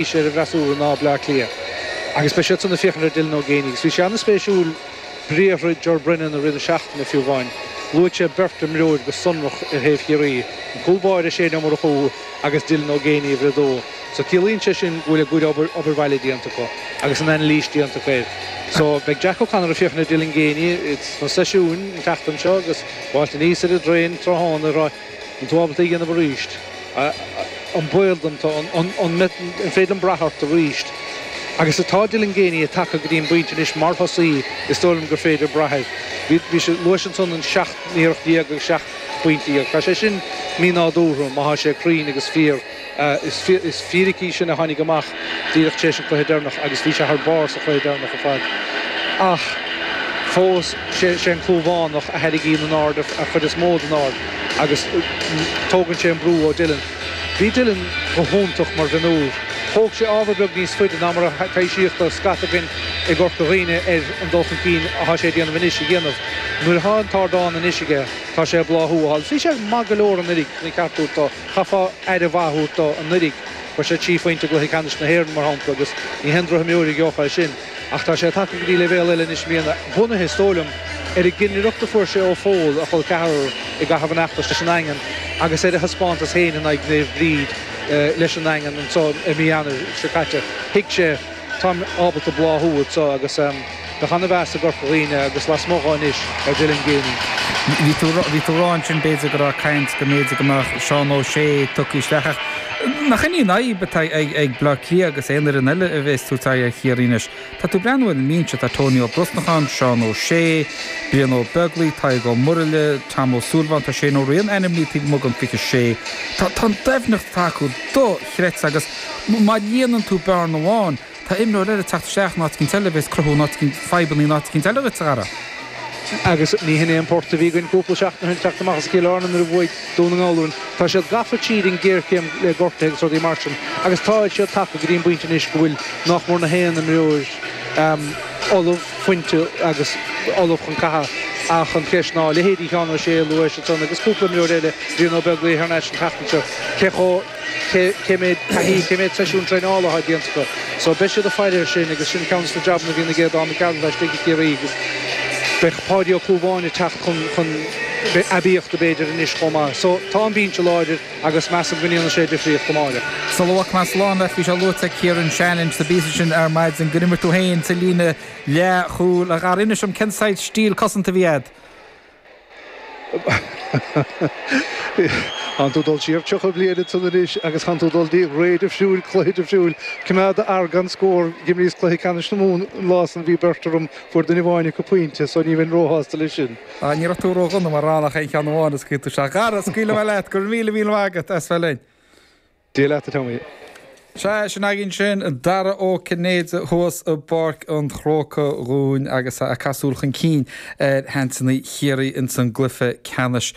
Bhí sé ar an bhfreasúra ná Bleá Cliath agus beidh siadsan ag féachaint ar Dylan Ó Géibheannaigh agus bhí sé an-spéisiúil briathra Ger Brennan i rith na seachtaine fiú amháin. Luaigh sé beirt imreoir go sonrach ar thaobh Chiarraí, an cúl báire Shane Ó Murchú agus Dylan Ó Géibheannaigh uimhir a dó. So ciallaíonn sé sin go bhfuil a gcuid obair bhaile déanta acu agus an anailís déanta acu air. So beidh Jack O'Connor ag féachaint ar Dylan Geaney sna seisiúin an tseachtain seo agus ag gabháilt aníos ar an dtraein tráthnóna ag rá An bhfuil tú ábalta é a dhéanamh arís? An baol dom tú? An féidir liom brath ort arís? Agus tá Dylan Geaney tagtha go dtí an bpointe anois mar thosaí is dóigh liom gur féidir brath air. Bhí sé, luais ansan an seacht n-iarracht déag agus seacht bpointe dhéag. Tá sé sin mínádúrtha má thá sé cruinn agus fíor. Is fíric í sin a tháinig amach díreach tar éis an cluiche deireanach agus bhí sé thar barr sa chluiche deireanach ar fad. Ach fós sé an Clúmhánach a tharraingíonn an aird an chuid is mó den aird agus tógann sé an brú ó Dylan. Bhí Dylan go hiontach mar mhionúr. Thóg sé ábhar beag níos faide ná mar a taibhsíodh do scata againn i gCorca Dhuibhne ar an dul chun cinn atá sé a dhéanamh anois a dhéanamh. Nuair atá an t-ardán anois aige tá sé ag bláthú a thuilleadh. Bhí sé maith go leor anuiridh, ceart go leor. Chaithfeá aire mhaith a thabhairt dó anuiridh, fuair sé trí phointe i gcluiche ceannais na hÉireann mar shampla agus ní haon droch-imreoir a gheobhadh é sin ach tá sé tagtha go dtí leibhéal eile anois i mbliana, bunaithe, is dóigh liom, ar an gcinnireacht a fuair sé ó Phól, a chol ceathrair, i gcaitheamh an fheachtais leis an nDaingean agus ar a thaispeántas féin in aghaidh Naomh Bríd leis an nDaingean anseo i mí Eanáir seo caite. Thuig sé, táim ábalta bláthú anseo agus. Bheadh an-mheas i gCorca Dhuibhne agus lasmuigh dhó anois ar Dylan Geaney. Bhí tú a rá ansin b'fhéidir go raibh caint go mb'fhéidir go mbeadh Seán Ó Sé tugtha isteach ach nach shin í an fhadhb atá ag Bleá Cliath agus aon fhoireann eile a bheas ag tabhairt aghaidh ar Chiarraí anois. Tá tú ag breathnú ar an mbinse, tá Tony Ó Brosnacháin, Seán Ó Sé, Brian Ó Beaglaoi, Tadhg Ó Muraile, Tom Ó Súilleabháin, tá Shane Ó Riain ainmnithe taobh amuigh den 26. Tá an doimhneacht atá acu dochreidte agus má líonann tú bearna amháin, Tá imreoir eile ag teacht isteach in áit eicínt eile a bheas ag cruthú fadhbanna in áit eicínt eile duit a Dhara. Agus ní hin é an port a bhí againn cúpla seachtain ó shin teacht amach as Cill Airne nuair a bhuaigh Dún na nGall orainn. Tá siad gafa tríd an ghéarchéim le gortuithe agus rudaí mar sin agus táid siad tagtha go dtí an bpointe anois go bhfuil nách mór gach aon imreoir ullamh, fuinte agus ullamh chun catha ach an cheist ná, leithéidí Sheán Ó Sé a luais ansan agus cúpla imreoir eile, Brian Ó Beaglaoi thar n-ais an tseachtain seo, cé chomh. cé méid taithí, cé méid seisiún traenála atá déanta acu. So beidh siad ag faire ar sin agus sin ceann de na jabanna a bhíonn ag Aodán Mac Gearailt laistigh i Ciarraí agus beidh Páidí Ó Clúmháin ag teacht chun aibíochta b'fhéidir anois chomh maith. So tá an binse láidir agus measaim go ndéanfaidh sé difríocht amárach. Sula bhfágfaidh mé slán leat, bhí sé luaite ag Kieran Shannon sa bpíosa sin ar maidin gur imir tú féin sa líne leathchúil. A Dhara, inis dom cén saghas stíl cosanta a bhí agat? Tánn tú dul siar 30 bliain ansan anois agus tánn tú dul dtí réimse amháin, sin cluiche, do thriúr coimeád a fhear gan scór. D'imríos cluiche ceannais na Mumhan an lá san, bhí beirt orm, fuair duine amháin acu pointe so ní bheinn róshásta leis sin. Á, ní raibh tú ró-dhona mura raibh ach aon cheann amháin a scaoil tú. Sea, a chara, scaoilfidh mé leat, go raibh míle míle maith agat as bheith linn. Dia leat a Tommy. Sea, sin againn sin, Dara Ó Cinnéide thuas i bPáirc an Chrócai dhúinn agus é ag súil chun cinn ar sheansanna Chiarraí ins an gcluife ceannais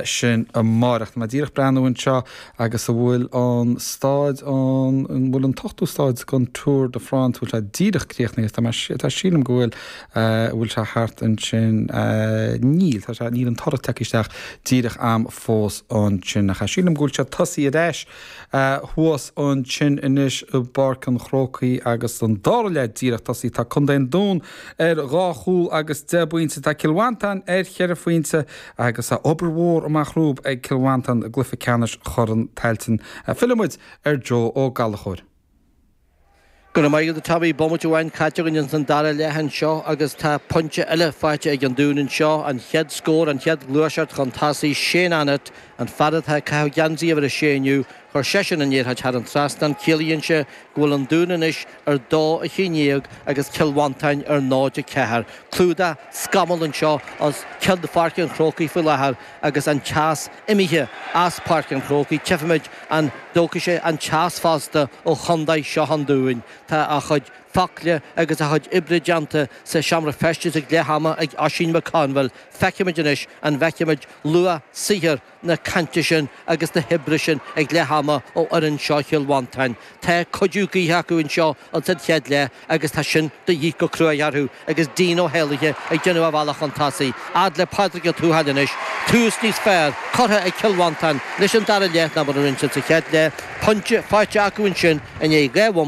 sin amáireach. Tá mé díreach breathnú anseo agus an bhfuil an stáid an bhfuil an t-ochtú stáid den Tour de France bhfuil sé díreach críochnaithe tá mé tá sílim go bhfuil An bhfuil sé thart ansin? Níl, tá sé, níl an toradh tagtha isteach díreach a'am fós ansin, ach sílim go bhfuil siad tosaí ar ais thuas ansin anois i bPáirc an Chrócaigh agus an dara leath díreach tosaí. Tá contae an Dúin ar dhá chúl agus deich bpointe, tá Cill Mhantáin ar cheithre phointe agus tá obair mhór amach rompu ag Cill Mhantáin i gcluiche ceannais Chorn Tailteann. Fillfimid ar Joe Ó Gallachóir. Go raibh maith agat a Tommy, bomaite amháin caite againn ins an dara leath anseo agus tá pointe eile faighte ag an Dún anseo, an chéad scór, an chéad gluaiseacht chun tosaigh, Shane Annett, an fear atá ag caitheamh geansaí uimhir a sé inniu, chuir seisean an liathróid thar an trasnán, ciallaíonn sé go bhfuil an Dún anois ar dó a haon déag agus Cill Mhantáin ar náid a ceathair. Clúdach scamall anseo os cionn Pháirc an Chrócaigh faoi láthair. Agus an teas imithe as Páirc an Chrócaigh tchífimid an dtógfaidh sé an teas fosta ó Chondae seo an Dúin. Tá a chuid focla agus a chuid oibre déanta sa seomra feistis ag leath ama ag Oisín Mac Conghail. Feicfimid anois an bhfeicfimid luach saothar na cainte sin agus na hoibre sin ag leath ama ó fhoireann seo Chill Mhantáin. Tá cuidiú gaoithe acu anseo ins an chéad leath agus tá sin de dhith go cruaidh orthu agus Dean Ó hÉalaithe ag déanamh a bhealach chun tosaigh. Fhad le Pádraig Ó Tuathail anois. Tús níos fearr curtha ag Cill Mhantáin leis an dara leath ná mar a rinne sa chéad leath. Pointe faighte acu ansin i ndiaidh dhá bhomaite.